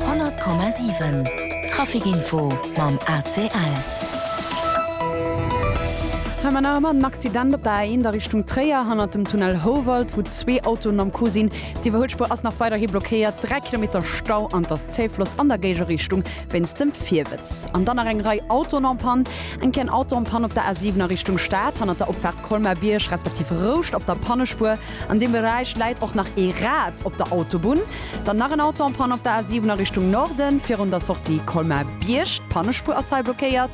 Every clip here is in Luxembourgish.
100,7 Trafic Info mam ACL. Hei man nach ëmmer den Accident op der A1 a Richtung Tréier, hannert dem Tunnel Houwald, wou zwee Autoen am Coup sinn. D'Iwwerhuelspuer ass nach weiderhi blockéiert, dräi Kilometer Stau an et ass Zéifloss an der Géigerichtung wéinst dem Virwëtz. An dann nach eng Rei Autoen en Panne. Eng kéien Auto en Panne op der A7 a Richtung Stad, hannert der Opfaart Colmar-Bierg respektiv Rouscht op der Pannespuer. An deem Beräich läit och nach ee Rad op der Autobunn. Dann nach en Auto en Panne op der A7 a Richtung Norden, virun der Sortie Colmar-Bierg. D'Pannespuer ass hei blockéiert.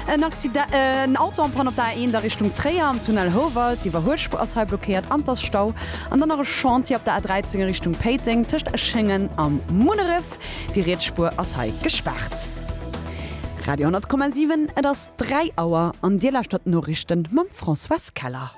En Accide en Auto en Panne op der A1 a Richtung Tréier am Tunnel Houwald. D'Iwwerhuelspuer ass hei blockéiert an et ass Stau. An dann nach e Chantier op der A13 a Richtung Péiteng tëscht Eschéngen a Munneref. Déi riets Spuer ass hei gespaart. Radio 10,7, et ass 3 Auer an Dir lauschtert d'Noriichten mam Françoise Keller.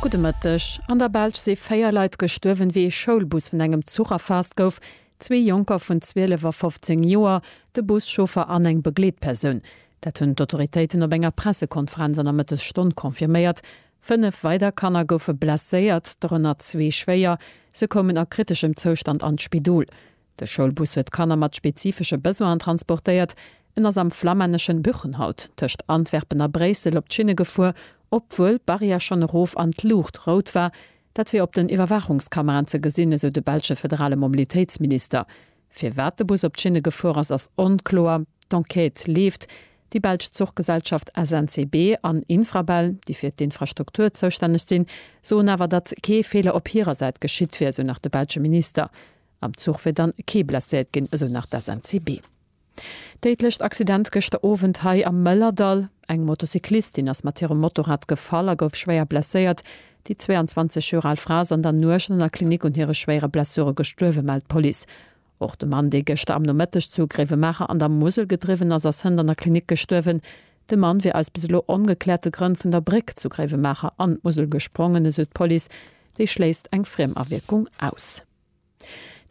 Gudde Mëtteg. An der Belsch si 4 Leit gestuerwen, wéi ee Schoulbus vun engem Zuch erfaasst gouf. Zwee Jonker vun 12 a 15 Joer, de Buschauffer an eng Begleetpersoun. Dat hunn d'Autoritéiten op enger Pressekonferenz an der Mëttesstonn confirméiert. Fënnef weider Kanner goufe blesséiert, dorënner zwee schwéier. Se koumen a kriteschem Zoustand an d'Spidol. De Schoulbus huet Kanner mat spezifesche Besoinen transportéiert. En ass am flamänneschen Buchenhout tëscht Antwerpen a Bréissel op d'Schinne gefuer, obwuel d'Barrière schonn erof an d'Luucht rout war. Dat wier op den Iwwerwaachungskameraen ze gesinn, esou de belsche federale Mobilitéitsminister. Firwat de Bus op d'Schinne gefuer ass, ass onkloer. D'Enquête leeft. Déi belsch Zuchgesellschaft SNCB an Infrabel, déi fir d'Infrastruktur zoustänneg sinn, soen awer, datt kee Feeler op hirer Säit geschitt wier, esou nach de belsche Minister. Am Zuch wier dann kee blesséiert ginn, esou nach d'SNCB. Déidlecht Accident gëschter Owend hei am Mëllerdall. Eng Motocyclistin ass mat hirem Motorrad gefall a gouf schwéier blesséiert. Déi 22 Joer al Fra ass an der Nuecht an der Klinik un hire schwéiere Blessure gestuerwen, mellt d'Police. Och de Mann, dee gëschter am Nomëtteg zu Gréiwemaacher an der Musel gedriwwen ass, ass hënt an der Klinik gestuerwen. De Mann wier aus bis elo ongekläerte Grënn vun der Bréck zu Gréiwemaacher an d'Musel gesprongen, esou d'Police. Déi schléisst eng Friemawierkung aus.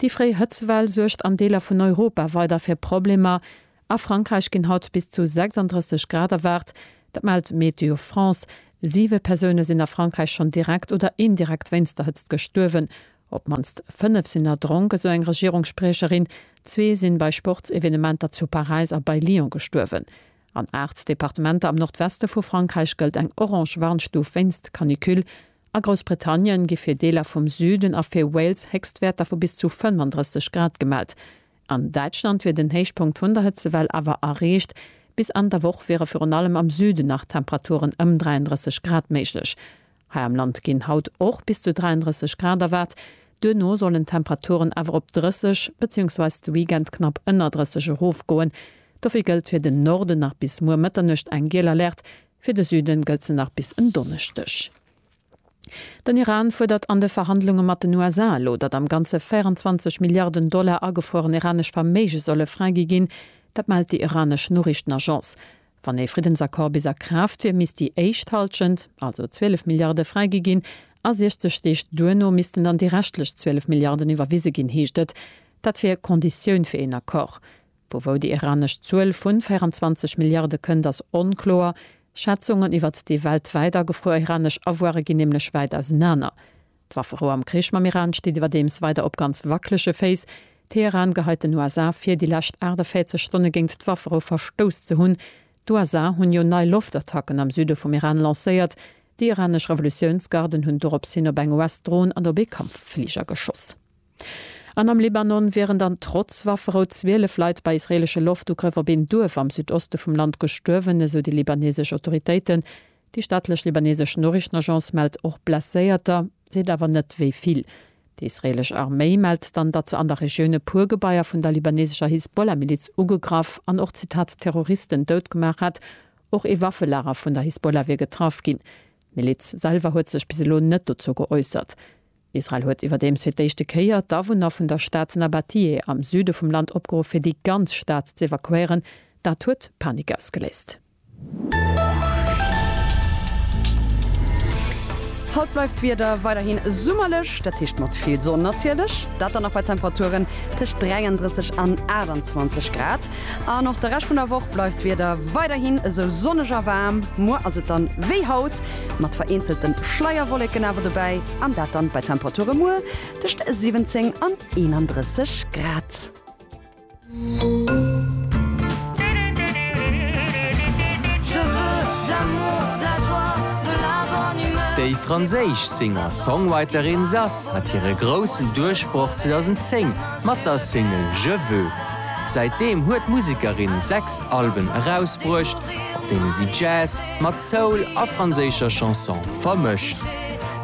Déi fréi Hëtzewell suergt an Deeler vun Europa weider fir Problemer. A Frankräich ginn haut bis zu 36 Grad erwaart, dat mellt Météo France. Siwe Persoune sinn a Frankräich schonn direkt oder indirekt wéinst der Hëtzt gestuerwen. Op d'mannst fënnef sinn erdronk, esou eng Regierungsspriecherin. Zwee si bei Sportsevenementer zu Paräis a bei Lyon gestuerwen. An 8 Departementer am Nordweste vu Frankräich gëllt eng orange Warnstuf wéinst Canicule. A Groussbritannien gi fir Deeler vum Süden a fir Wales Héchstwäerter vu bis zu 35 Grad gemellt. An Däitschland wier den Héichpunkt vun der Hëtzewell awer erreecht. Bis Enn der Woch wiere virun allem am Süden nach Temperaturen ëm 33 Grad méiglech. Hei am Land ginn haut och bis zu 33 Grad erwaart, duerno sollen d'Temperaturen awer op 30 beziehungsweis de Weekend knapp ënner 30 erofgoen. Dofir gëllt fir den Norden nach bis muer Mëtternuecht eng giel Alerte, fir de Süden gëllt se nach bis en Donneschdeg. Den Iran fuerdert an de Verhandlunge mat den USA elo, datt am Ganze 24 Milliarden Dollar agefrueren iranesch Verméige solle fräigi ginn. Dat mellt déi iranesch Noriichtenagence. Wann ee Friddensaccord bis a Kraaft wier, misst déi éischt Hallschent, also 12 Milliarde fräigi ginn a 60 Deeg duerno missten dann déi reschtlech 12 Milliarden iwwerwise ginn, heescht et. Dat wier Konditioun fir een Accord. Vu wou déi iranesch Zuel vu 24 Milliarde kënnt, ass onkloer. Schätzungen iwwert déi weltwäit agefruer iranesch Avoire ginn nämlech wäit ausenaner. D'Wafferou am Krich mam Iran steet iwwerdeems weider op ganz wackelege Féiss. Teheran geheit den USA vir, déi lescht 48 Stonne géint d'Wafferou verstouss ze hunn. D'USA hunn jo nei Loftattacken am Süde vum Iran lancéiert. Déi iranesch Revolutiounsgarden hunn dorops hin op eng US-Dron an op ee Kampffliger geschoss. An am Libanon wieren dann trotz Wafferou 12 Leit bei israeelesche Loftugrëff op een Duerf am Südoste vum Land gestuerwen, esou déi libanesesch Autoritéiten. Déi staatlech libanesesch Noriichtenagence mellt och Blesséierter, seet awer net wéi vill. Déi israeelesch Arméi mellt dann, datt se an der Regioun e puer Gebaier vun der libanesescher Hisbollah-Miliz ugegraff an och, Zitat, Terroristen dout gemaach hätt. Och ee Waffelager vun der Hisbollah wier getraff ginn. D'Miliz selwer huet sech bis elo net dozou geäussert. Israel huet iwwerdeems fir d'éischte Kéier d'Awunner vun der Stad Nabatiyeh am Süde vum Land opgeruff, fir déi ganz Stad z'evakuéieren. Dat huet Panik ausgeléist. Haut bleift d'Wieder weiderhin summerlech, dat heescht mat vill Sonn natierlech. Dat dann och bei Temperaturen tëscht 33 an 28 Grad. An och de Rescht vun der Woch bleift d'Wieder weiderhin esou sonneg a waarm. Muer ass et dann wéi haut, mat vereenzelte Schleierwolleken awer dobäi, an dat dann bei Temperature muer tëscht 17 an 31 Grad. Déi franséisch Singer-Songwriterin Zaz hat hire groussen Duerchbroch 2010 mat der Single Je veux. Säitdeem huet d'Musekerin sechs Alben erausbruecht, op deene si Jazz mat Soul a franséischer Chanson vermëscht.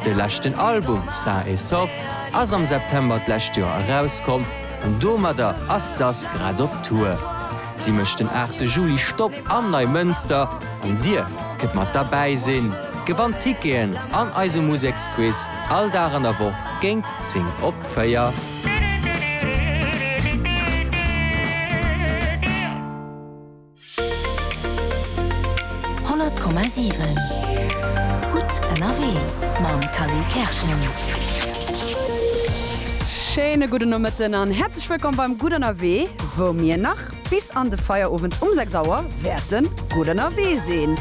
De leschten Album Sain et Sauf ass am September d'lescht Joer erauskomm. Domadder ass d'Sass grad op Tour. Si mécht den 8 Juli Stopp am Neimënster an dir kënnt mat derbäi sinn, gewannt Ticketen an eise Museksquiz all Dag an der Woch géint 10 op 4. 100,7 Gutt ënnerwee mam Khalil Kerschen. Schéine gudden Nomëtten an häerzlech wëllkomm beim Gutt ënnerwee, wou mir nach bis an de Feierowend um 6 Auer wäerte gutt ënnerwee sinn.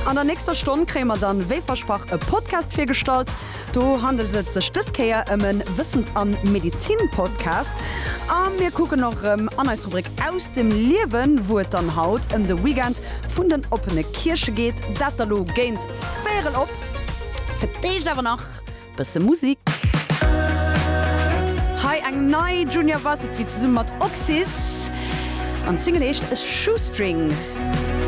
An der nächster Stonn kréie mer dann, wéi versprach, e Podcast virgestallt. Do handelt et sech dës Kéier ëm e Wëssens a Medezin-Podcast. A mir kucken och erëm an eis Rubrik Aus dem Liewen, wou et dann haut ëm de Weekend vun den oppene Kierche geet. Dat da lo géint véierel op. Fir d'éischt awer nach bësse Musik. Hei eng nei Junior Varsity zesumme mat Oxys an d'Single heescht Shoestring.